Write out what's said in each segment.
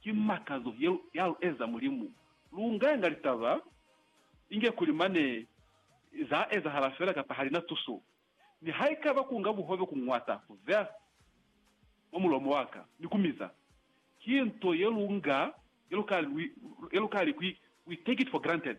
Ki makazo ye ya lu eza Mulimu. Lu nganga litaba inge kuli mane za ezahala fela kapa hali na tuso. Mi haikaba ku nga buhobe ku ñwata, ku vea mwa mulomo wa ka, ni ku miza, ki nto ye lu nga, ye lu ka, ye lu ka li ku, we take it for granted.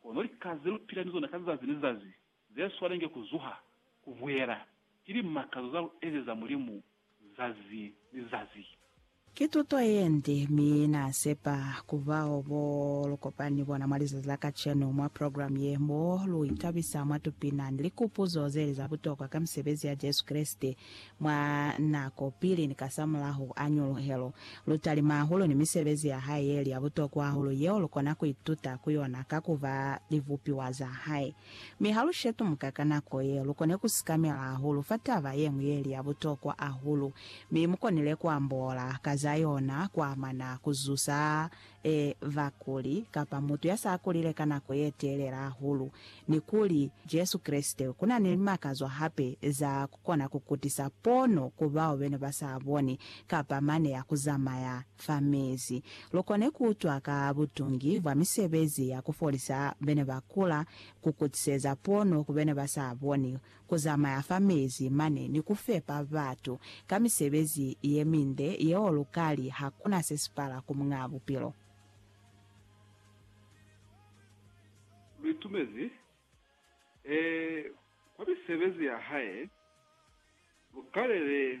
Kono lika ze lu pila ni zona ka zazi ni zazi ze swanenge ku zuha, ku buyela, ki limakazo za lu ezeza Mulimu zazi ni zazi. Ki tuto ye nde, mi Na sepa ku bao bo lu kopani ni bona mwa lizazi la kacenu mwa programu ye, mo lu itabisa mwa tupina ni likupuzo ze li za butokwa ka misebezi ya Jesu Kreste, Mwa nako pili ni kasamulaho a ñuluhelo, lu talima hahulu ni misebezi ya hae ye li ya butokwa hahulu yeo lu kona ku ituta ku yona ka ku ba libupiwa za hae. Mi ha lu shetumuka ka nako ye, lu kone ku sikamela hahulu fa taba ye ñwi ye li ya butokwa hahulu, mi mu konile ku ambola ka za yona ku amana ku zusa e ba kuli, kapa mutu ya sa kulile ka nako ye telela hahulu, ni kuli, Jesu Kreste, ku na ni limakazo hape za ku kona ku kutisa pono ku bao be ne ba sa boni, kapa mane ya ku zamaya fa mezi. Lu kone ku utwa ka butungi bwa misebezi ya ku folisa be ne ba kula, ku kutiseza pono ku be ne ba sa boni, ku zamaya fa mezi mane ni ku fepa batu ka misebezi ye minde yeo lu ka li ha ku na se si pala ku Muñaa Bupilo. Lu itumezi, ee, kwa misebezi ya hae, lu kalele